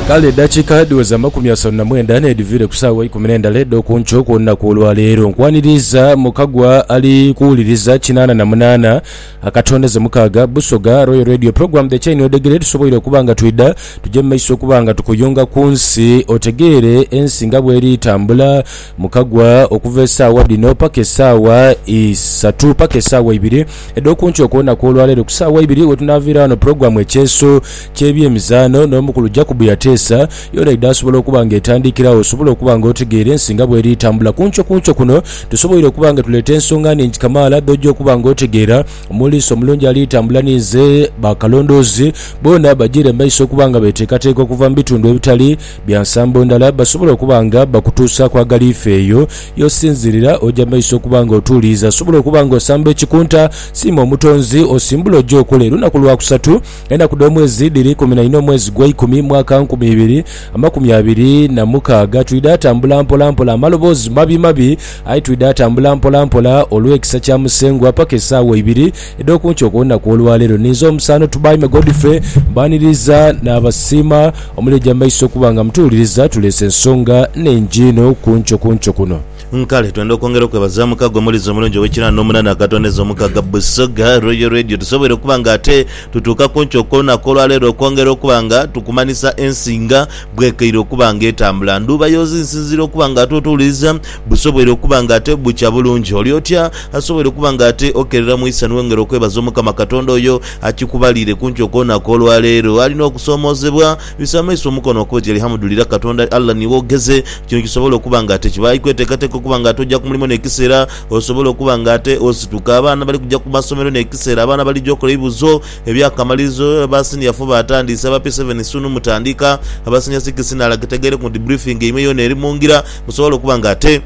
Kale edhakiika dhiweze amakumi asatu na mwenda n'edhiviire ku saawa eikumi n'endala edh'oku nkyo ku lunaku lwa leero. Nkwaniriiza mu kagwa ali kuwuliriza kinaana na munaana akatondeze mukaaga. Busoga Royal Radio Program The Chain Odegere tusoboire okuba nga twidha tuje mu maiso okuba nga tukuyunga ku nsi otegeere ensi nga bw'eri tambula. Mukagwa okuva esaawa dhino paka esaawa isatu paka esaawa ibiri edhokunkyo okwonaku olwaleero ku saawa ibiri wetunaviira wano pulogulamu ekyeeso kyebyemizaano n'omukulu Jacob yateesa yoona idha asobola okuba nga etandikirawo osobole okuba nga otegeera ensi nga bweriitambula kunkyo kunkyo kuno tusoboire okuba nga tuleeta ensonga nhingi kamaala dhoja okuba nga otegeera omuliisa omulungi aliitambula ninze bakalondoozi boona bajiire mumaiso okuba nga beteekateeka okuva mubitundu ebitali Bya nsambo ndala basobola okuba nga bakutuusaaku aghali ife eyo y'osinziirira oja maiso okuba nga otuuliiza. Osobola okuba nga osamba ekikunta, siima Omutonzi, osimbule oje okole lunaku lwa kusatu. Enaku dh'omwezi dhiri ikumi na inha omwezi gwa ikumi mwaka nkumi ibiri amakumi abiri na mukaaga. Twidha atambula mpola mpola amaloboozi mabi mabi aye twidha atambula mpola mpola olw'ekisa kya Musengwa paka esaawa ibiri. Edh'oku nkyo okw'olunaku olwaleero ninze omusaano Tubaime Godfrey mbaniriza naabasiima omuli egy'amaiso okuba nga mutuwuliriza tuleese ensonga nhingi inho ku nkyo ku nkyo kuno. Nkale twenda okwongera okwebaza mukago omulizi omulungi ow'ekinaana omunana akatoneza omukaga Busoga Royal Radio tusoboire okuba nga ate tutuuka ku nkyo okw'olunaku olwaleero okwongera okuba nga tukumanhisa ensinga Bwekeire okuba nga etambula ndhuuba yoozi nsinziira okuba nga ate otuwuliriza busoboire okuba nga ate bukya bulungi. Oli otya? Asoboire okuba nga ate okerera mu isanhu wengera okwebaza Omukama Katonda oyo akikubaliire kunkyo kwona kw'olwaleero. Alina okusoomoozebwa? Bisa amaiso omukono wakube oti Alihamudulira Katonda Allah niiwe ogheze. Kino kisobole okuba nga ate kibaayi kweteekateeka okuba nga ate oja ku mulimo n'ekiseera osobola okuba nga ate osituka. Abaana bali kuja ku masomero n'ekiseera abaana balija okola ebibuzo. Eby'akamalirizo, aba Senior fo baatandiise, aba P7 sunu mutandika, aba Senior Six nala kitegeere ku nti briefing yaimwe yoona eri mu ngira, musobole okuba nga ate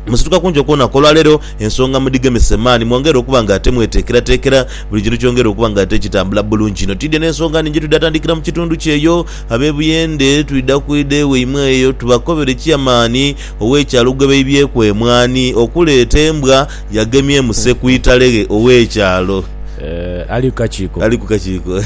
musituka kunjo kwona kw'olwaleero ensonga mudhigemese maani, mwongere okuba nga ate mweteekerateekera buli kintu kyongere okuba nga ate kitambula bulungi inho. Twidhie n'ensonga nhingi twidha tandikira mu kitundu kyeyo ab'e Buyende, twidha kwidha ewaimwe eyo tubakobere Chairman ow'ekyalo gwebaibyeku emwaani okuleeta embwa, yagemye emuse ku italeghe ow'ekyalo. Ali kakiiko. Ali ku kakiiko.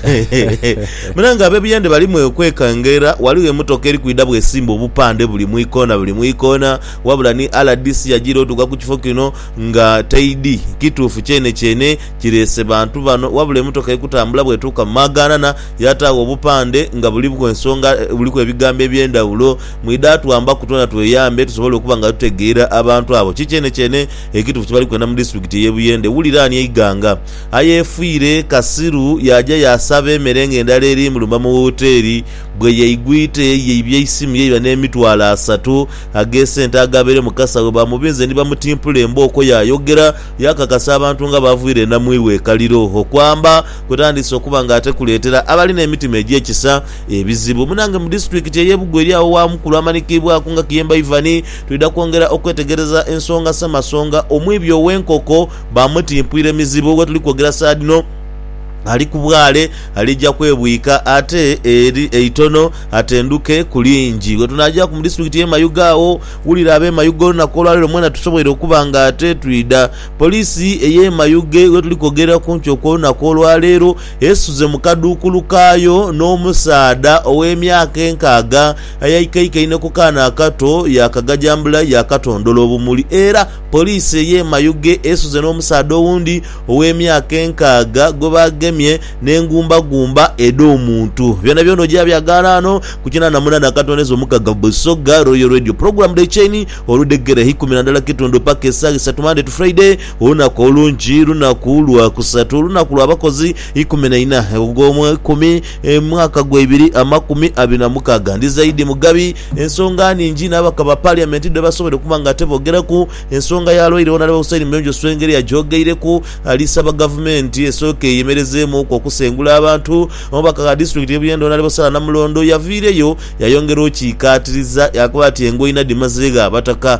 Mira nga ab'ebiyandhe bali mwekwekanga era ghaligho emotoka eri kwidha bw'esimba obupandhe buli mu ikoona buli mu ikoona. Wabula ni rdc yajiira otuuka ku kifo kino nga taidhi kituufu kyenekyene kireese bantu bano wabula emotoka eri kutambula bw'etuuka mu maagaanana yaataagho obupandhe nga buliku ensonga, buliku ebigambo eby'endhawulo Mwidha twambaku twena tweyambe tusobole okuba nga tutegeera abantu abo ki kyenekyene ekituufu kye bali kwenda mu disitulikiti ey'e Buyende. Wulira ani eighanga ayeefiire kasiru yaaja yaasaba emere ng'endala erimulumba mu woteeri bwe yaigwite yaibya eisimu yaiba n'emitwalo asatu ag'esente agabaire mu kasawo baamubinze ni bamutimpula embooko. Yaayogera yaakakasa abantu nga b'avuira enamwiwa e Kaliro. Okwamba kwe tandiise okuba nga ate kuleetera abalina emitima egy'ekisa Ebizibu, Munange mu disitulikiti ey'e Bugo eri agho wa mukulu amanikiibwaku nga Kiyemba Ivan. Twidha kwongera okwetegereza ensonga Ssemasonga omwibi ow'enkoko baamutimpuire mizibu. We tuli kwogera saadhino ali ku bwale alija kwebwika ate eri eitono atenduke ku lingi. We tunaajaaku mu disitulikiti y'e Mayuge agho, wulira ab'e Mayuge olunaku olwaleero mwena tusoboire okuba nga ate twidha. Poliisi ey'e Mayuge we tuli kwogera ku nkyo kw'olunaku olwaleero. esuze mu kaduukulu kaayo n'omusaadha ow'emyaka enkaaga ayaikaikaine ku kaana akato yaakagajambula yaakatondola obumuli era poliisi ey'e Mayuge esuze n'omusaadha owundi ow'emyaka enkaaga gwe baagemye n'engumbagumba edh'omuntu. Byonabyona oja byagaala ano ku kinaana munaana katondeza omukaaga Busoga Royal Radio Program Day Chain oludhegereha ikumi na ndala kitundu paka esaaha isatu Monday to Friday Olunaku olungi, lunaku lwa kusatu, olunaku lwa bakozi ikumi na ina ogw'omw'eikumi, mwaka gwa ibiri amakumi abiri na mukaaga. Ndi zaidi mugabi ensonga ningi n'ababaka ba Parliament dhe basobodde okuba nga ate boogeraku. Ensonga ya lwaire Honorable Hussein Muyonjo Swengeri agyogeireku, ali saba Gavumenti esooke eyemerezeemuuku okusengula abantu. Omubaka gha District y'e Buyende Honorable Sarah Namulondo yaviireyo yayongera okukiikaatiriza, yaakoba ati engoina dhimazegho Abataka.